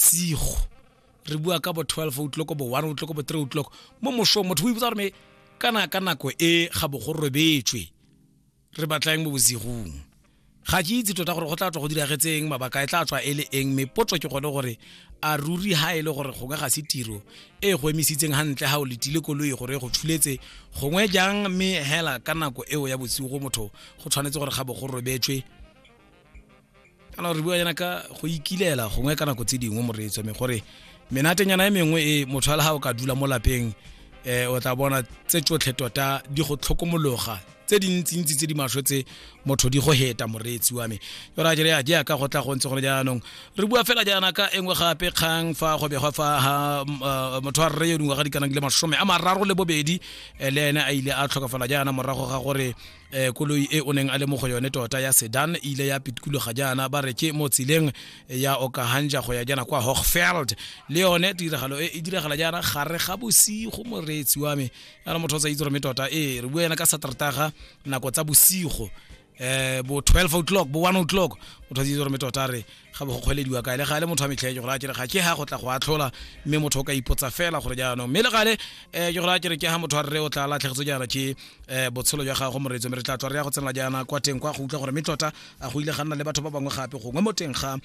bosigo re bua ka bo 12 o'clock bo 1 o'clock bo 3 o'clock mo mosong motho o ipotsa gore kana ka nako e ga bo go robetswe re batlang mo bosigong ga ke itse tota gore go tla tswa go diragetseng mabaka e tla tswa e le eng mme potso ke gone gore a ruri ha e le gore gongwe ga se tiro e go emisitseng gantle ga o letile koloi gore go tshuletse gongwe jang mme hela ka nako eo ya bosigo motho go tshwanetse gore ga bo go robetswe kana re bua yana ka go ikilela gongwe ka nako tse dingwe moreetso me gore menatenyana e mengwe e motho a le ga o ka dula mo lapeng um o tla bona tse tsotlhe tota di go tlhokomologa tse dintsintsi tse di maswe tse motho di go heta moreetsi wa me yora jere ya jaaka go tla go ntse gone jaanong re bua fela jaana ka engwe gape kgang fa go begwa fa ha eh, motho a rre yo dingwaga di kanang le masome a mararo le bobedi eh, le ene a ile a tlhokafala jaana morago ga gore eh, koloi e o neng a le mo go yone tota ya sedan e ile ya pitkologa jaana ba re ke mo tseleng ya okahanja go ya jaana kwa hochfeld le yone tiragalo e e diragala jaana gare ga bosigo moreetsi wa me yana motho o tsa itse gore me tota ee re bua yana ka satertaga nako tsa bosigo eh bo 12 o'clock bo 1 o'clock motho a itse gore me tota re ga bo go kgwelediwa kae le gale motho a metlhae jegore a kere ga ke ha go tla go atlhola mme motho o ka ipotsa fela gore jaanong mme le gale um jegore a kere ke ha motho a rre o tla latlhegetse jaana ke um botshelo jwa gago moretso mme re tla tswa re ya go tsenela jaana kwa teng kwa go utlwa gore mme tota a go ile ga nna le batho ba bangwe gape gongwe mo teng ga um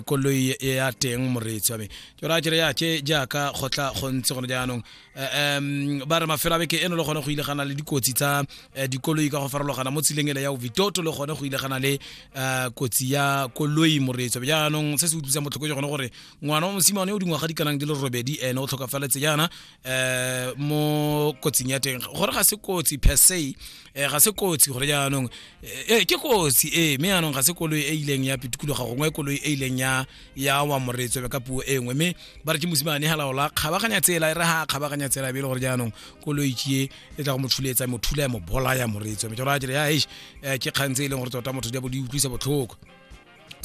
koloi ya teng moretso ame jegore a kere ya ke jaaka go tla go ntse gone jaanong Eh, um ba re mafelo a beke eno le gone go ile gana le dikotsi tsa eh, dikoloi ka go farologana mo tseleng ele ya ovitoto le gone go ile gana le eh, kotsi ya koloi moreetso jaanong se se utlwisang botlhoko ke gone gore ngwana wa mosimane o dingwaga di kanang di le robedi ene o tlhokafaletse jaana um mo kotsing ya teng gore ga se kotsi per se ga se kotsi gore jaanong e ke kotsi e mme jaanong ga se koloi e ileng ya pitikologa gongwe koloi e ileng ya ya wa moreetswe ka puo e nngwe mme ba re ke mosimane halaola kgabaganya tsela e re ha kgabaganya tsela be e le gore jaanong koloitšie e tla go mo thuletsa mo thula ya mo bolaya moreetswe mme jalo a dire ya eish eh, ke kgang tse e leng gore tota motho di bo di utlwisa botlhoko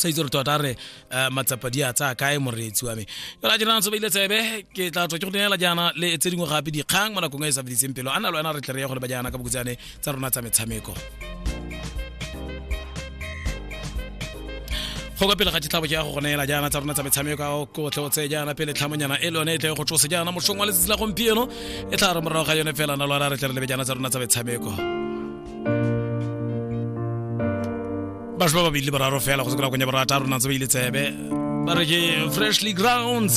sa itse gore tota re eh, matsapa di a tsaya kae moreetsi wa me jala jena ntse beile tsebe ke tla tswa ke go neela jaana le tse dingwe gape dikgang mo nakong e e sa fediseng pelo a na le wena re tle re ye go le ba jaana ka bokutsane tsa rona tsa metshameko go ka pele ga ditlhabo ke ya go go neela jaana tsa rona tsa metshameko a o kotle o tseye jaana pele tlhamonyana e le yone e tle go tsosa jaana mosong wa letsatsi la gompieno e tla re morago ga yone fela na lwana re tle re lebe jaana tsa rona tsa metshameko batho ba babedi le boraro fela go se kona konya borata rona tse ba ile tsebe ba re ke freshly grounds